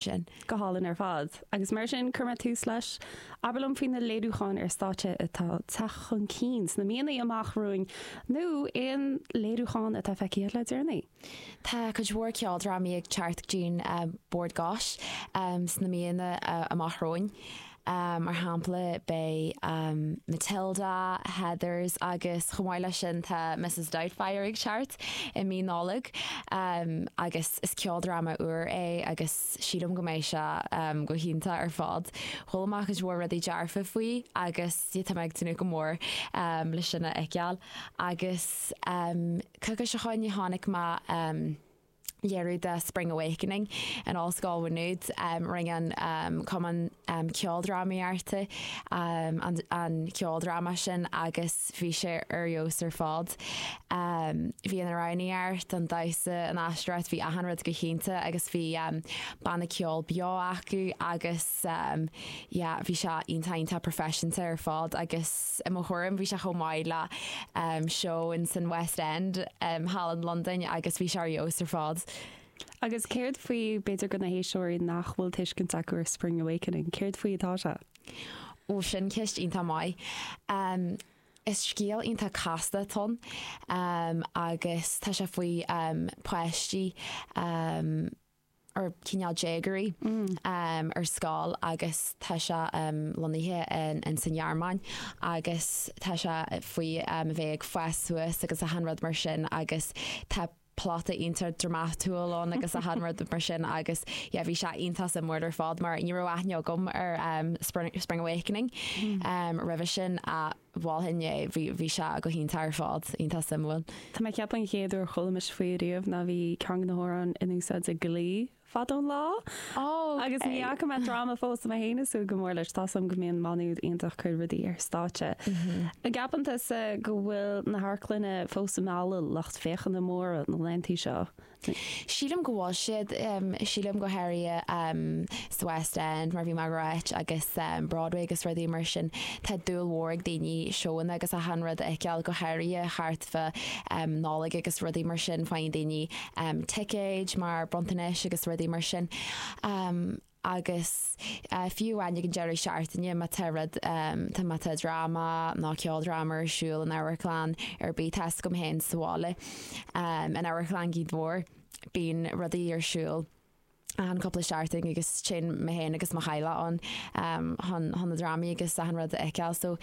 sin. Go hálainn ar fad. Agus mar sin, chuir mé tús leis. Abair liom faoi na léiriúcháin ar stáitse atá ag teacht chun cinn sna míonna amach romhainn, nó aon léiriúchán atá feicthe le deireanaí. Tá cuid mhór ceoldrámaí ag teacht go dtí'n Bord Gáis sna míonna amach romhainn. mar shampla, beidh Matilda, Heathers agus chomh maith leis sin tá Mrs Doubtfire ag teacht i mí Nollag agus is ceoldráma úr é agus sílim go mbeidh sé go hiontach ar fad. Chuala mé cuid mhór rudaí dearfa faoi agus tá mé ag tnúth go mór leis sin a fheiceáil agus cúpla seachtain ó shin chonaic mé léiriú de Spring Awakening in Ollscoil Mhá Nuad. Rinne an Cumann Ceoldrámaíochta an ceoldráma sin agus bhí sé ar fheabhas ar fad. Bhí an amhránaíocht, an damhsa, an aisteoireacht, bhí achan rud go hiontach agus bhí banna ceoil beo acu agus yeah bhí sé iontach iontach proifisiúnta ar fad agus. I mo thuairim, bhí sé chomh maith le seó ins an West End, thall in Londain, agus bhí sé ar fheabhas ar fad. Agus céard faoi, b'fhéidir go na héisteoirí nach bhfuil tuiscint acu ar Spring Awakening, céard faoi atá sé? Ó, sin ceist iontach mhaith. Is scéal iontach casta atá ann agus tá sé faoi páistí. nó cineál déagóirí ar scoil agus tá sé lonnaithe ins an Ghearmáin agus tá sé faoi a bheith ag fás suas agus achan rud mar sin agus tá plota iontach dramatúil ann agus achan rud mar sin agus yeah, bhí sé iontach suimiúil ar fad mar ní raibh aithne agam ar um, Spring, Spring Awakening um, roimhe sin a mholfainn é. Bhí sé go hiontach ar fad, iontach suimiúil. Tá mé ag ceapadh an chéad uair a chuala mise faoi ariamh ná bhí ceann de na hamhráin in úsáid ag Glee fadó an lá. Agus ní fhaca mé an dráma fós so tá mé féin ag súil go mór leis. Tá a fhios agam go mbíonn Má Nuad iontach ag cur rudaí ar stáitse. An gceapann tusa go bhfuil na hamharclanna fós ag mealladh lucht féachana móra na laetheanta seo? Sílim go bhfuil siad. Sílim go háirithe sa West End mar bhí mé ag rá duit agus Broadway agus rudaí mar sin tá dúil mhór ag daoine seóanna agus achan rud a fheiceáil go háirithe thart fá Nollaig agus rudaí mar sin faigheann daoine ticéid mar bronntanais agus rudaí mar sin. agus fiú amháin ag an deireadh seachtaine má tá rud, tá, má tá dráma nó ceoldráma ar siúl in amharclann ar bith, tá a fhios agam féin sa bhaile, in Amharclann Ghaoth Dobhair, bíonn rudaí ar siúl achan chúpla seachtain agus téann mé féin agus mo theaghlach ann chun, chun na drámaí agus achan rud a fheiceáil. So,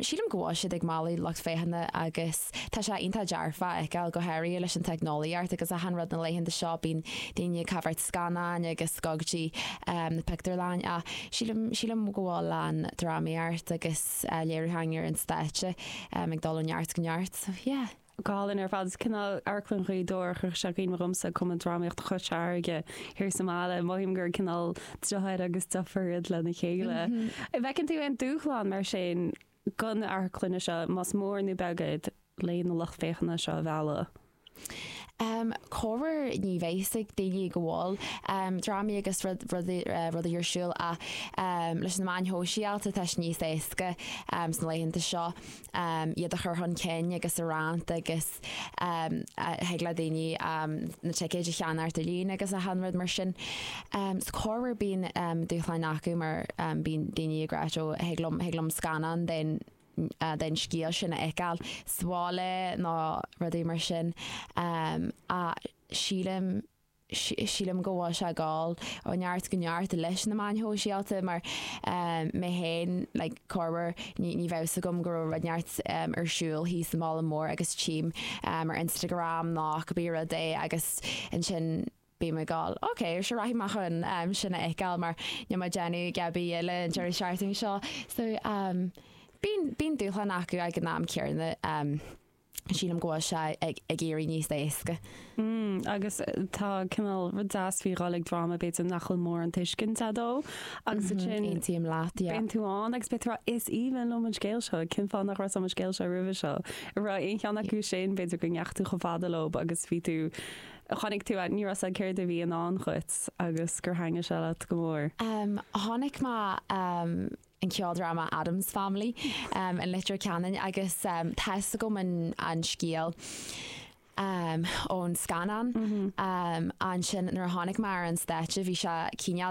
sílim go bhfuil siad ag mealladh lucht féachana agus. Tá sé iontach dearfach a fheiceáil, go háirithe leis an teicneolaíocht ann, agus achan rud na laethanta seo, bíonn daoine ag amharc scannáin agus gabháil go dtí na pictiúrlainne ach sílim, sílim go bhfuil an drámaíocht agus léiriúcháin ar an stáitse ag dul ó neart go neart. Yeah. Go hálainn ar fad. Is cineál Amharclann Ghaoth Dobhair a chuirfeadh sé i gcuimhne domsa, Cumann Drámaíochta Chois Fharraige thiar sa mbaile. Mothaím gur cineál deartháir agus deirfiúr iad lena chéile. An bhfeiceann tú aon dúshlán mar sin? Do na hamharclanna seo, más mór nó beag iad, leis na lucht féachana seo a mhealladh. Corruair ní bhíonn a fhios ag daoine go bhfuil drámaí agus rudaí ar siúl ach leis na meáin shóisialta tá sé níos éasca sna laethanta seo iad a chur chun cinn agus a roinnt agus thig le daoine na ticéid a cheannacht ar líne agus achan rud mar sin. So corruair bíonn dúshláin acu mar bíonn daoine ag rá ó thig liom, thig liom scannán den, den scéal sin a fheiceáil sa bhaile nó rudaí mar sin. Ach sílim, Sílim go bhfuil sé ag gabháil ó neart go neart leis na meáin shóisialta mar mé féin, like, corruair, ní bheadh fhios agam go raibh rud ar bith ar siúl thíos sa bhaile mór agus tchím ar Instagram nó cibé rud é agus ansin bím ag gabháil ok, sure rachaidh mé chun sin a fheiceáil mar níl mé ag déanamh a dhath ar bith eile an deireadh seachtaine seo so bíonn dúshlán acu ag an am céanna. Sílim go bhfuil sé ag éirí níos éasca. Agus tá cineál rud deas faoi dhul ag dráma b'fhéidir nach bhfuil mórán tuiscint agat dó agus ansin aontaím leat, yeah. bíonn tú ann agus beidh tú a rá 'is aoibhinn liom an scéal seo, cén fáth nach raibh a fhios agam an scéal seo roimhe seo? An raibh aon cheann acu sin, b'fhéidir go ndeachaigh tú chomh fada leo agus bhí tú, chonaic tú, ní raibh a fhios agat céard a bhí i ndán dhuit agus gur thaitin sé leat go mór. Chonaic mé an ceoldráma Addams Family i Leitir Ceanainn agus tá's agam an scéal ón scannán. Ansin nuair a tháinig mé ar an stáitse bhí sé cineál